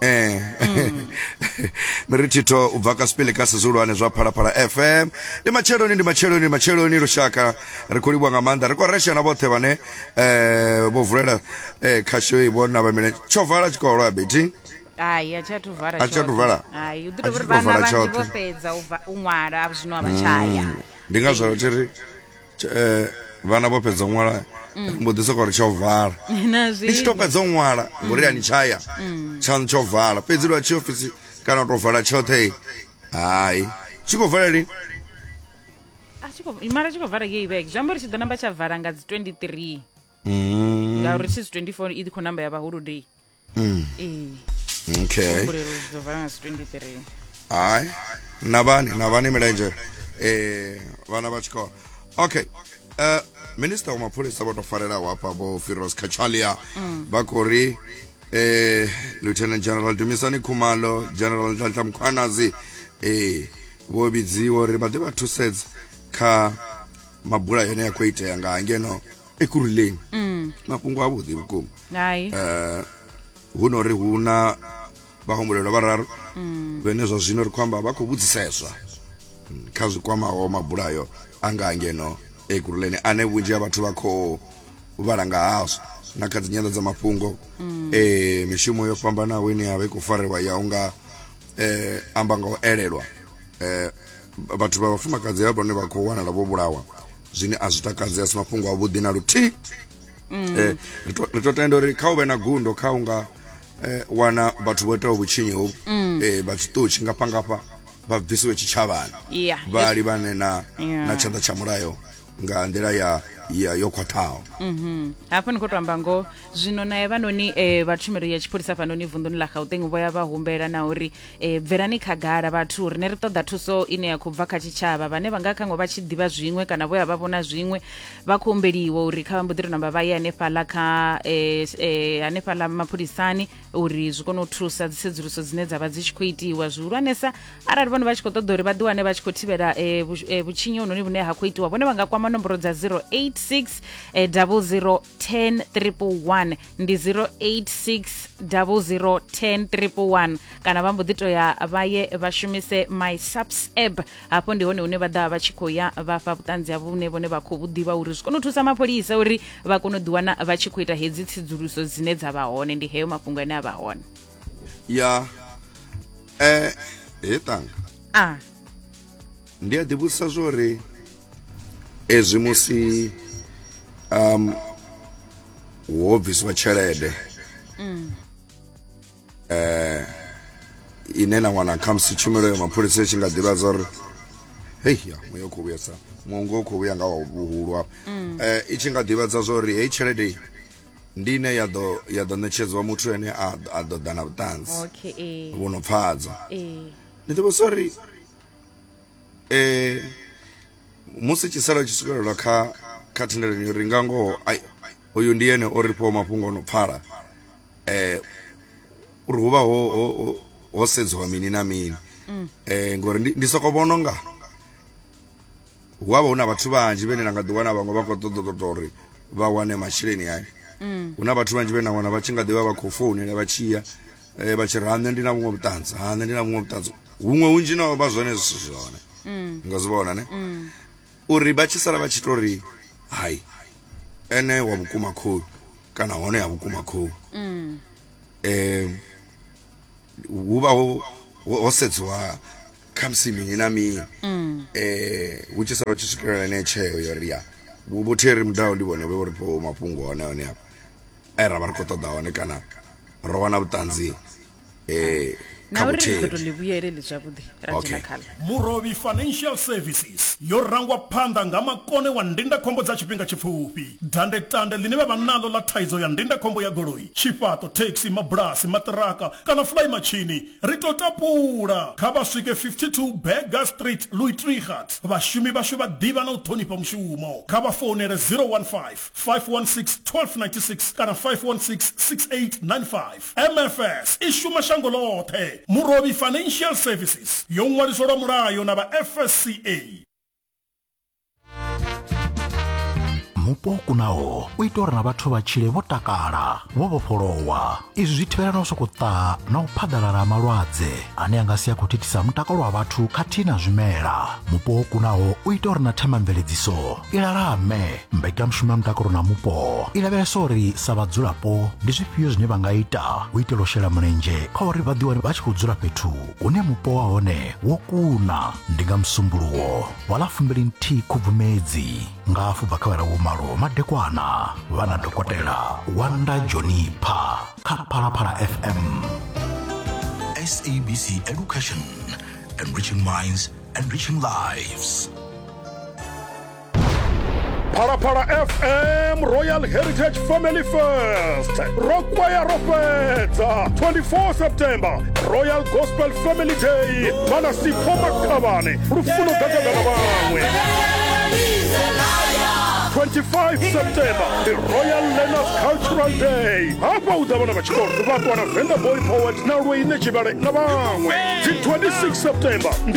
Eh. Mm. miri thitho u bva ka sipili ka sizulwane zwa phalaphala fm ndi matsheloni ndi matsheloni ndi matsheloni lushaka ri khou livhuwa nga maanḓa ri khou resha na vhoṱhe vhane um vho vulela um eh, khasho i vho navha mine tsho vala tshikolo ya beti hai a tsha tuvala a tsha tuvala hai u ḓi tovha ri vhana vhanzhi vho fhedza u ṅwala a zwino a vha tshaya mm. ndi ngazwo ri tshi ri eh, vhana vho fhedza u ṅwala mm. mbo ḓi sokou ri tsho vala ndi tshi to fhedza u ṅwala ngori ya ni tshaya mm. tshaṋu tsho vala fhedzi lwa tshi ofisi kana u tou vala tshoṱhe hayi tshi khou vala lini mara tshi khou vala ngei vhege zwi amba uri tshi ḓo namba tsha vala nga dzi 23 mm. ngauri tshi dzi 24 i ḓi khou namba ya vhahulu day mm. ee okay mbulelo dzo vala nga 23 hayi nabani nabani milenje eh vana vha tshikolo okay uh, minista wa mapholisa vho to farelaho hafha vho firos kachalia mm. vha khou ri eh lieutenant general dumisani khumalo general nhlanhla mkhwanazi eh vho vhidziwa uri vha ḓe vha thusedza kha mabula yone ya khou itea nga ngeno ekuruleng mm. mafhungo a vhuḓi vhukuma hai eh hu no ri hu na vhahumbulelwa vhararu mm. vhene zwa zwino ri khou amba vha khou vhudziseswa mm, kha zwi kwamaho mabulayo a nga ngeno ekuruleni ane vhunzhi ha vhathu vha khou vhala nga hazwo na kha dzinyanda dza mafhungo mm. eh mishumo yo fhambanaho ine ya vha i khou farelwa ya unga eh amba nga u elelwa eh vhathu vha vhafumakadzi vha vhone vha khou wanala vho vhulawa zwine a zwi takadzi a si mafhungo avhuḓi na luthihi mm. eh, ri to tenda uri kha u vhe na gundo kha u nga eh, wana vhathu vho itaho vhutshinyi hovu mm. eh, vha tshiṱutshi ngafha ngafha vha bvisiwe tshitshavhani yeah. vha livhane na, yeah. na tshanḓa tsha mulayo nga nḓila ya ya yo khwaṱhaho mhm. hafha ni khou to amba ngoho zwino nae vhanoni um eh, vha tshumelo ya tshipholisa fhanoni vunḓuni ḽa gauteng vho ya vha humbela na uri e, bvelani khagala vhathu rine ri ṱoḓa thuso ine ya khou bva kha tshitshavha vhane vha nga khaṅwe vha tshi ḓivha zwiṅwe kana vho ya vha vhona zwiṅwe vha khou humbeliwa uri kha vha mbo ḓi tou namba vha ye hanefhaḽa kha e, e, hanefhaḽa mapholisani uri zwi kone u thusa dzisedzuluso dzine dza vha dzi tshi khou itiwa zwihulwanesa arali vhone vha tshi khou ṱoḓa uri vha ḓiwane vha tshi khou thivhela e, vhu- e, vhutshinyi hononi vhune ha khou itiwa vhone vha nga kwama nomboro dza 086 e, 00 10111 ndi 08600101 kana vha mbo ḓi to ya vha ye vha shumise my subs app hafho ndi hone hune vha ḓa vha tshi khou ya vha fha vhuṱanzi havho vhune vhone vha khou vhu ḓivha uri zwi kone u thusa mapholisa uri vha kone u ḓiwana vha tshi khou ita hedzi tsedzuluso dzine dza vha hone ndi heyo mafhungo ane a vha hone ya eh he tanga a ndi a ḓivhudzisa zwo ri ezwi musi um ho bvisiwa tshelede mm. eh ine na wana khamusi tshumelo ya mapholisa i tshi nga ḓivha zwa uri hei ya muya khou vhuya sa mungu u khou vhuya nga wa vhuhulu hafho mm. eh i tshi nga ḓivhadza zwa uri heyi tshelede ndi ine ya ḓo ya ḓo ṋetshedzwa muthu ene a ḓo ḓa na vhuṱanzi vhu no pfhadzwa ni ḓivha sorry eh musi tshisala tshi swikelelwa kha kha thendelano yo ri nga ngoho ai uyu ndi yene o ri fhiwa mafhungo ono pfala eh uri huvha ho ho ho- ho sedziwa mini na mini eh ngori ndi, ndi soko vhona nga hu avha hu na vhathu vhanzhi vhene na nga ḓi wana vhaṅwe vha khou ṱoḓa ṱoḓa uri vha wane masheleni ayo mm. hu na vhathu vhanzhi vhene na wana vha tshi nga ḓivha vha khou founela vha tshiya eh, vha tshi ri ha nṋe ndi na vhuṅwe vhuṱanzi ha nṋe ndi na vhuṅwe vhuṱanzi huṅwe hunzhi na vha zwone zwi si zwone mm. nga zwi vhona ne mm. uri vha tshi sala vha tshi to ri hai ene wa vhukuma khou kana hone ya vhukuma khou um hu vha ho sedziwa khamusi mini na mini um hu tshi sala tshi swikelela ine tsheo yo ri ya vhu- vhutheri mudaho ndi vhone vhe uri po mafhungo hone hone hafha e ra vha ri khou ṱoḓa hone kana ro wana vhuṱanzi um na kha uri ri ḓo to vhutheri ḽi vhuyeleli zwavhuḓi ra Okay. dzhena khaḽo murovhi financial services yo rangwa phanḓa nga makone wa ndindakhombo dza tshifhinga tshipfufhi dandetande ḽine vha vha naḽo ḽa thaidzo ya ndindakhombo ya goloi tshifhaṱo thekhisi mabulasi maṱiraka kana fulai matshini Ri tou tapula, kha vha swike 52 Burger Street, Louis Trichardt. Vhashumi vhashu vha ḓivha na u ṱhonifha mushumo. Kha vha founele 015 516 1296 kana 516 6895. MFS i shuma shango ḽoṱhe. Murovhi Financial Services yo ṅwaliswa lwa mulayo na vha FSCA. mupo kunaho u ita uri na vhathu vha tshile vho takala vho vhofholowa izwi zwi thivhela na u sokou ṱaha na u phaḓalala ha malwadze ane a nga si a khou thithisa mutakalo wa vhathu khathihi na zwimela mupo wo kunaho u ita uri na themamveledziso i lalame mbekanyamushumo ya mutakalo na mupo i lavhelesa uri sa vhadzulapo ndi zwifhio zwine vha nga ita u itela u shela mulenzhe kha uri vha ḓiwane vha tshi khou dzula fhethu une mupo wa hone wo kuna ndi nga musumbulowo wa ḽa fumbili nthihi khubvumedzi nga afho bva kha vha lawo malo madekwana vha na dokotela wanda jonipha kha phalaphala fm sabc education enriching minds enriching lives phalaphala fm royal heritage family fest ro kwaya ro fhedza 24 september royal gospel family day vhana sipho makhavhane lufuno gagagana vhaṅwe 25 september the royal learners cultural day hafha u ḓa vhana vha tshikolo vha ṱwana venda boy poet na lweine tshivhale na vhaṅwe dzi 26 september ndi